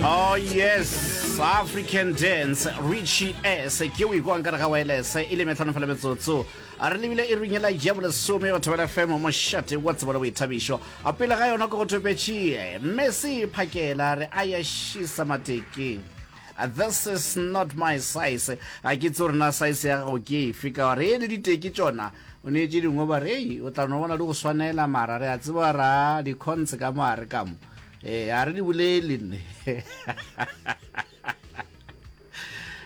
oh yes african dance richie s ke o ikwang ka re ga wireless e le metlhano fela metsotso a re lebile e runya la ja bolesome batho ba fm mo shate wa tsebo le boithabišo a pele ga yona ko go thopetšee mme se phakela re a ya šisa mateke Uh, this is not my size a ke tse rena size ya gago ke efe ka gore e le diteki tsona o ne tse dingwe ba re ei o tla no bona di go swanela mara re a tseba ra di-cons ka mo a re kamo ee a re di bolele nne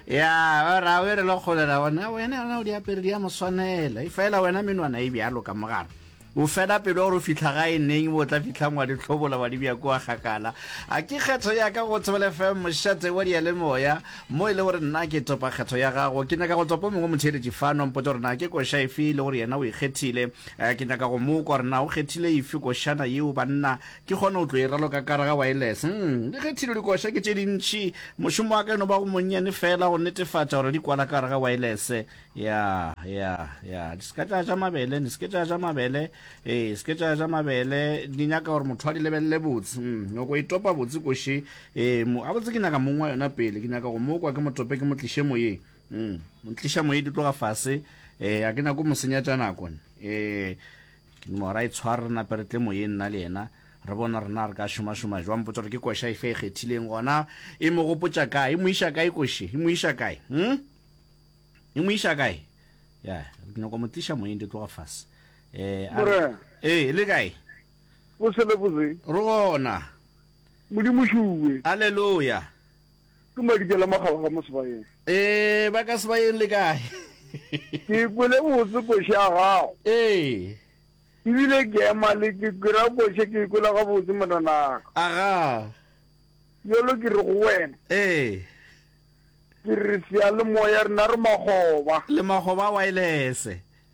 ya ba ra o e re le kgolela ona wena yona o di apere di ya moswanela e fela wena menwana e bjalo ka mogana o fela pelo gore o fitlha ga e neng bo tla fitlhang wa ditlhobola wa dibja kua gakala a ke kgetho ya ka go thobele fm mošate wa diyalemoya mo e le gore nna ke topa kgetho ya gago ke nyaka go topa mongwe motheeletši fano mpotse gore na ke koša efe e le gore yena o ikgethile eh, ke nyaka go mo kwa gore na o kgethile efe košana yeo banna ke kgona go tlo e raloka kare ga wireless mm, le ge thilo dikoša ke tše dintši mošomo wa ka eno ba go monnyane fela go netefatša gore di kwala kare ga wireless ya ya ya di seke tša ja mabele di seke tša ja mabele ee seke tša ja mabele di nyaka gore motho a di lebelele botse mm, nyoko e topa botse koši ee a botse ke nyaka mong wa yona pele ke nyaka go mo kwa ke mo tope ke mo tliše moyeng mm, mo tliša moye di tloga fase ee a ke nyako mo senya tša nako ee Mora e tshware re nape re tle moyeng nna le yena re bone gore na re ka šomašoma jwang. Mpotsa gore ke koša efe e kgethileng gona e mo gopotša kae, e mo iša kae koše, e mo iša kae, um e mo iša kae? Ya, ke nyako mo tliša moyeng di tloga fase. Um Mora. Ee, le kae? Bose le bose. Re gona. Modimo šuwe. Aleluya. Ke Madikela mo kgaba ga mo Sebayeng. Ee, ba ka Sebayeng le kae? Ke kwele botse koše ya gago. Ee. Ebile ke ema le ke kwera koše ke ikwela gabotse monanaka. Aga. Bjalo ke re go wena. Ee. Ke re seyalemoya rena re makgoba. Le makgoba a waelese.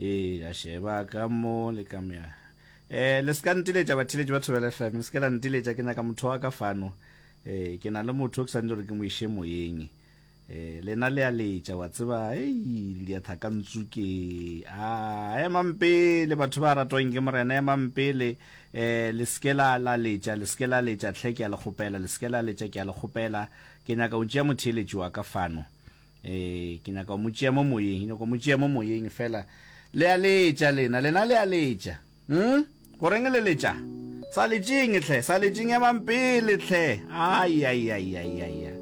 ee a sheba ka mo le ka mea eh le ska ntiletša batheletši ba thobela fm le ska la ntiletša ke nyaka motho wa ka fano eh ke na le motho ke santse gore ke mo iše moyeng eh lena le a letša wa tseba ei le dia thaka ntsuke a ema mpele batho ba ratwang ke morena ema mpele eh le ska la la letša le ska la letša tlhe ke a le kgopela le ska la letša ke a le kgopela ke nyaka o ntšea motheletši wa ka fano ee ke nyaka go mo tšea mo moyeng nyaka go mo tšea mo moyeng fela le a letša lena lena le a letša um goreng le letša sa letšeng tlhe sa letšeng emang pele tlhe aiaiaiaiaia